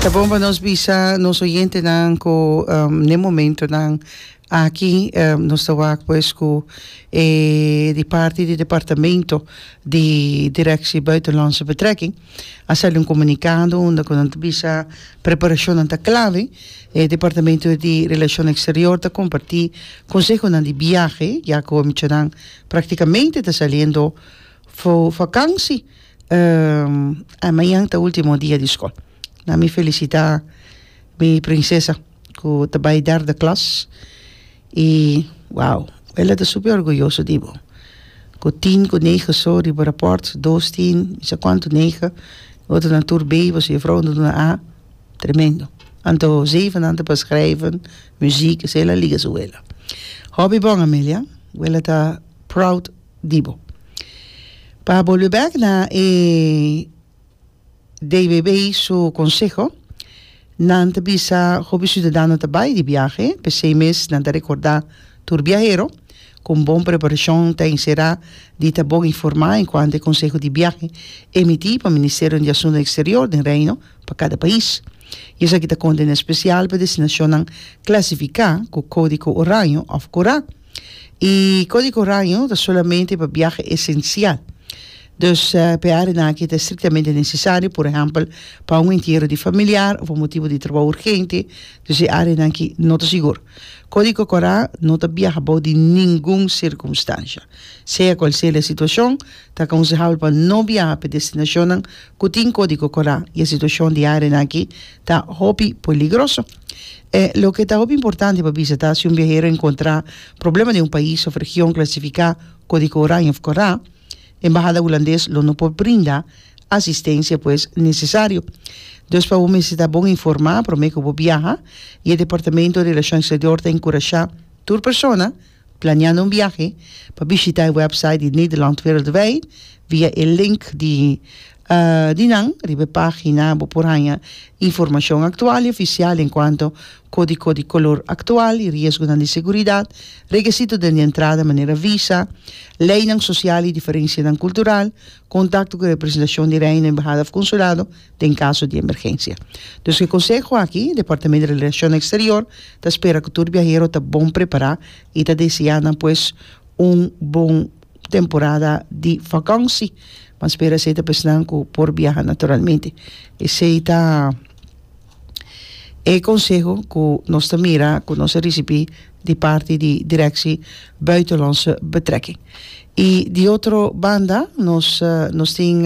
Ta bon pa nos bisa nos oyentenan cu um, den momentonan aki um, nos ta wak pues cu eh, di parti di departamento di directie buitenlandse betrekking a sali un comunicado unda cu nan ta bisa preparacionnan ta clave eh, departamento di relacion exterior ta comparti consehonan di biahe ya cu omichonan practicamente ta saliendo fu vakantie a mañan ta ultimo dia di skol na mi felisita mi prinsesa ku ta bai derde klas i wow el a ta super orguyoso di bo ku tin ku nege so riba raport dos tin kisa kuantu nege otronan tur be boso juffrouw a duna a tremendo anto zevennan ta pas schrijven muziek esei el a liga su wela hopi bon Amelia wela ta proud di bo. Pa bolbe bek na e DBB su konseho, nan ta bisa hopi siudadano ta bai di biahe, p'esei mes nan ta rekordá tur biahero ku un bon preparashon ta enserá di ta bon informá en kuantu e konseho di biahe emití pa Ministerio di Asuntu Eksterior den Reino pa kada pais. I esaki ta kondena spesial pa destinashonnan klasifiká ku Kódiko Oraño òf Kurá. Y código raño ta solamente pa biaha esencial. Dus pe áreanan aki ta estrictamente necesario, por ehempel, pa un entiero di familiar of pa motibo di trabou urgente, dus e áreanan aki no ta sigur. Código Corá no ta biaha bou di ningun circunstancia. Sea cual sea la situacion, ta aconsehable pa no biaha p'e destinacionnan cu tin Código Corá y e situacion di áreanan aki ta hopi peligroso. E loke ta hopi importante pa bisa ta si un biahero encontra problema den un pais of region clasifica co di Oranje of Cora, Embahada Hulandes lo no por brinda asistencia pues necesario. Dus pa bo mester ta bon informa prome cu bo biaha y e Departamento Relacion Exterior ta encurasha tur persona Planeando un biahe? Pa bishita e website di Nederland Wereldwijd via e link di di nan riba e pagina. Bo por haña informashon aktual i ofisial enkuanto kódiko di kolor aktual i riesgonan di seguridat, rekesito den di entrada manera visa, leinan sosial i diferensianan kultural, kontakto ku representashon di Reino, embahada òf konsulado, den kaso di emergensia. Dus e konseho aki, Departamento di Relashon Eksterior ta spera ku tur biahero ta bon prepará i ta deseá nan pues un bon temporada di vakansi. Pan spera esei ta pesnan ku por biaha naturalmente. Esei ta e konseho ku nos ta mira ku nos a risibí di parti di Direkshi Buitenlandse Betrekking. I di otro banda nos nos tin